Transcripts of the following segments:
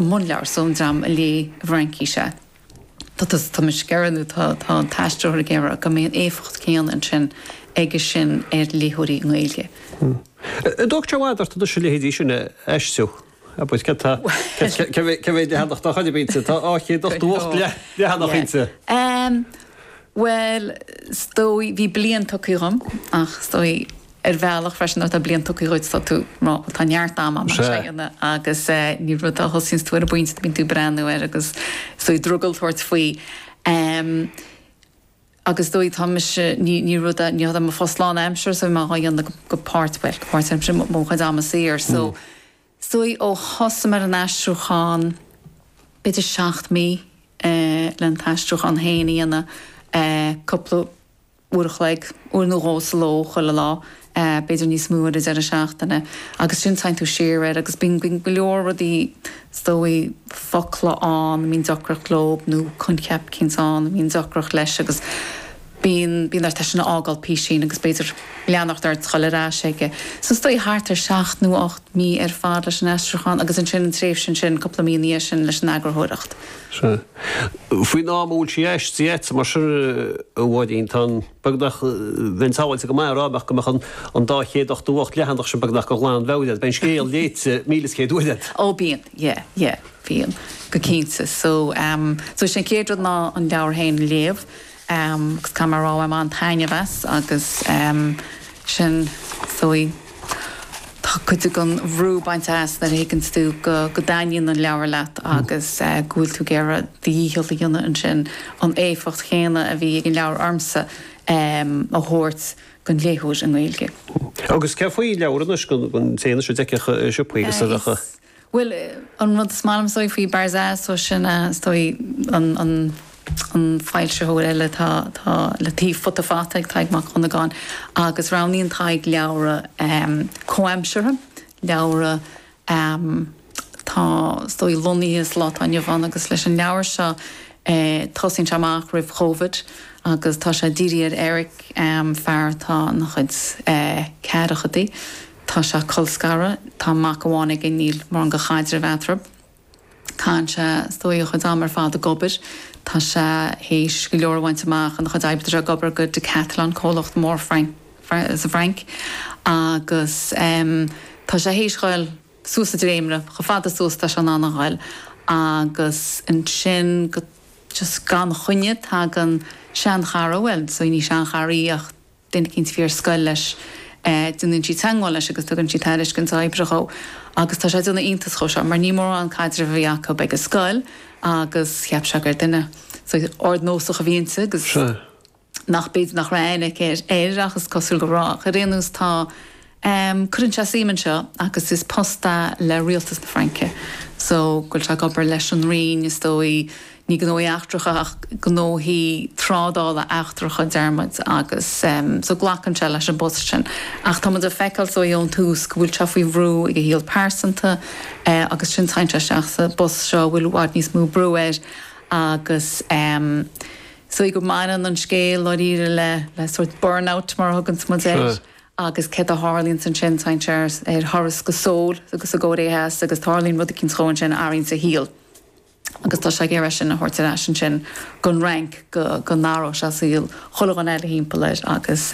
mbunleabhar so an dream a léigh i bhFraincís é. Tá mise ag iarraidh, nó tá an t-aistritheoir ag iarraidh, go mbeidh an éifeacht chéanna ansin aige sin ar léitheoirí i nGaeilge. An dtógfaidh sé i bhfad ort anois a leithéidí sin a aistriú? Cé mhéad leathanach dá chuid a bhí inti? Tá 288 leathanach inti. Bhuel, is dóigh, bhí bliain tugtha dhom ach is dóigh, ar bhealach freisin nuair atá bliain tugtha dhuit tá tú ag rá bhuel tá neart ama agamsa é a dhéanamh agus ní rud é a thosaíonns tú ar an bpointe bíonn tú ag breathnú air agus is dóigh drogall tabhairt faoi agus is dóigh tá mise ní ní rud é ní hé mo phost lán aimsire so tá mé dhá dhéanamh go go páirt bhuel go páirt aimsire i mo chuid ama saor so is dóigh ó thosaigh mé ar an aistriúchán b'fhéidir seacht mí le an t-aistriúchán féin a dhéanamh cúpla uair a chloig, uair nó dhó sa ló chuile lá, b'fhéidir níos mó ar an deireadh seachtaine, agus ansin téann tú siar air agus bíonn go leor rudaí is dóigh focla ann a mbíonn deacracht leo nó coincheap cinnte ann a mbíonn deacracht leis agus bíonn bíonn ort é sin a fhágáil písín agus b'fhéidir leanacht ort is a ghoil ar ais aige. So is dóigh thart ar seacht nó ocht. mí ar fad leis an aistriúchán agus ansin an tréimhse ansin, cúpla mí ina dhiaidh sin, leis an eagarthóireacht. Sea. Faoin am a bhfuil sí aistrithe agat, mar sin, a Mháirín, tá an, beagnach, bheinn sábháilte go maith ag rá nach go mbeadh an an dá chéad ochtó hocht leathanach sin beagnach go ghlanmheabhair agat. Bíonn an scéal léite míle is céad uair agat. Ó, bíonn. Yeah, yeah. Bíonn. Go cinnte. So, so sin an chéad rud ná an leabhar féin a léamh. agus caithfidh mé a rá bhain mé an-taitneamh as agus ansin is dóigh tá cuid gon bhrú bainte as nuair a thuigeanns tú go go dtaitníonn an leabhar leat agus go bhfuil tú ag iarraidh do dhícheall a dhéanamh ansin an éifeacht chéanna a bhí ag an leabhar ormsa a thabhairt gon léitheoir i nGaeilge. Agus céard faoi an leabhar anois gon té anseo a d'fheicfeadh sa siopa é agus a? Bhuel, an rud is maith liom, is dóigh, faoi Barzaz, so sin, is dóigh, an, an, an foilsitheoir eile atá, atá le taobh Futa Fata ag Tadhg Mac Dhonnagáin agus roghnaíonn Tadhg leabhra comhaimseartha, leabhra atá, is dóigh, lonnaithe sa lá atá inniu ann agus leis an leabhar seo, tosaíonn sé amach roimh Chovid agus tá sé ag dírií ar Eric, fear atá ina chuid ceathrachadaí. Tá sé colscartha. Tá mac amháin aige, níl mórán go chaidreamh eatarthu. Caitheann sé is dóigh a chuid am ar fad ag obair. Tá sé théis go leor a bhaint amach ina chuid oibre tá sé ag obair go Decathlon, comhlacht mór sa bhFrainc, agus tá sé théis ghoil suas an dréimire. Chomh fada suas is atá sé in ann a ghoil agus ansin go just gan choinne tagann seanchara, bhuel, ní seanchara í ach Duine eicínt a bhí ar scoil leis, déanann sí teagmháil leis agus tugann sí tairiscint oibre dhó. Agus tá sé ag déanamh iontas dhó seo, mar ní mórán an caidreamh a bhí acu ag an scoil agus cheap sé gur duine ardnósach a bhí inti agus nach b'fhéidir nach raibh aithne aici air ach is cosúil go raibh. Ach ar aon nós tá. Cuireann sé suim anseo agus is post é le rialtas na Fraince so go bhfuil sé ag obair leis an Roinn, is dóigh, ní gnóthaí eachtracha ach gnóthaí trádála eachtracha, déarfaidh muid, agus so glacann sé leis an bpost sin. Ach tá muid ag feiceáil so ón tús go bhfuil sé faoi bhrú ag a shaol pearsanta agus ansin téann sé isteach sa bpost seo a bhfuil i bhfad níos mó brú air agus is dóigh go mbaineann an scéal dáiríre le sórt burnout mar a thuganns muid air. agus céard a tharlaíonns ansin, téann sé ar thuras go Seoul sa gCóiré Theas agus tarlaíonn rud eicínt dhó ansin a athraíonns a shaol agus tá sé ag iarraidh sin a thabhairt ar ais ansin gon Fhrainc go go n-athródh sé saol chuile dhuine eile thimpeall air agus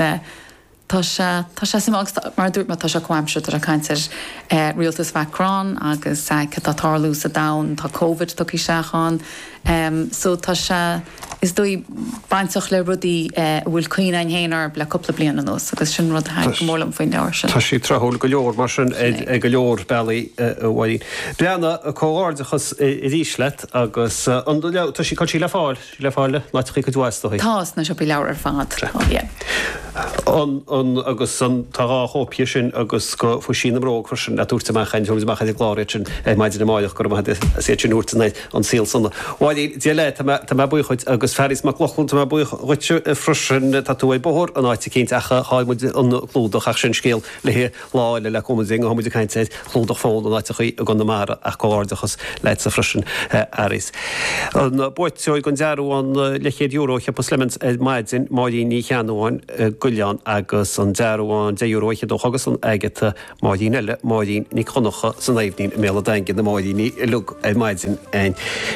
tá sé tá sé suimiúil agus mar a dúirt mé tá sé comhaimseartha ag caint ar rialtas Mhacron agus céard atá ag tarlú sa domhan tá Covid tugtha isteach ann so tá sé. is dóigh, bainteach le rudaí a bhfuil cuimhne againn féin orthu le cúpla bliain anuas agus sin rud a thaitnigh go mór liom faoin leabhar sin. Tá sé tráthúil go leor mar sin ar go leor bealaí a Mháirín. Breanna, comhghairdeachas arís leat agus an leabhar, tá sí, tá sí le fáil, sí le fáil in áiteachaí cuid mhaith is dóigh. Tá, sna siopaí leabhar ar fad. An, an, agus an, tá dhá chóip dhe sin agus go Phuisín na mBróg freisin le tabhairt amach, a thabhairt amach ar an gclár iad sin ar maidin amáireach go raibh maith agat as iad sin a thabhairt anoir. an saol Slán a Mháirín, Dia leat, tá mé, tá mé buíoch dhuit, agus Fearghas Mac Lochlainn, tá mé buíoch dhuit freisin, tá tú ar bóthar in áit eicínt ach chaill muid an clúdach ach sin scéal le haghaidh lá eile le cúnamh Dé, gabhfaidh muid ag caint ar chlúdach fón in áiteachaí i gConamara ach comhghairdeachas leatsa freisin Fhearghas. An buaiteoir den dearbhán leithchéad euro do shiopa Slemons ar maidin, Máirín Ní Cheannabháin, Coilleán, agus an dearbhán deich euro a cheadódh agus an Agatha. Máirín eile, Máirín Nic Dhonnacha san Aibhnín i mBéal a' Daingin, na Máiríní uilig ar maidin.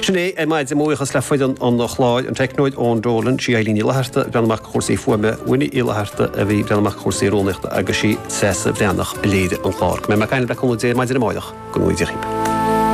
Sin é ar maidin, mo bhuíochas le foireann an chláir, an teicneoir Eoin Dolan, sí Eilín Ní Fhlatharta a bhreathnaigh amach do chúrsaí fuaime, Winnie Uí Fhlatharta a bhí ag breathnú amach do chúrsaí rúnaíochta agus sí Treasa Bhreathnach a léirigh an clár. Go mbeidh mé ag caint libh le cúnamh Dé maidin amáireach. Go nuige.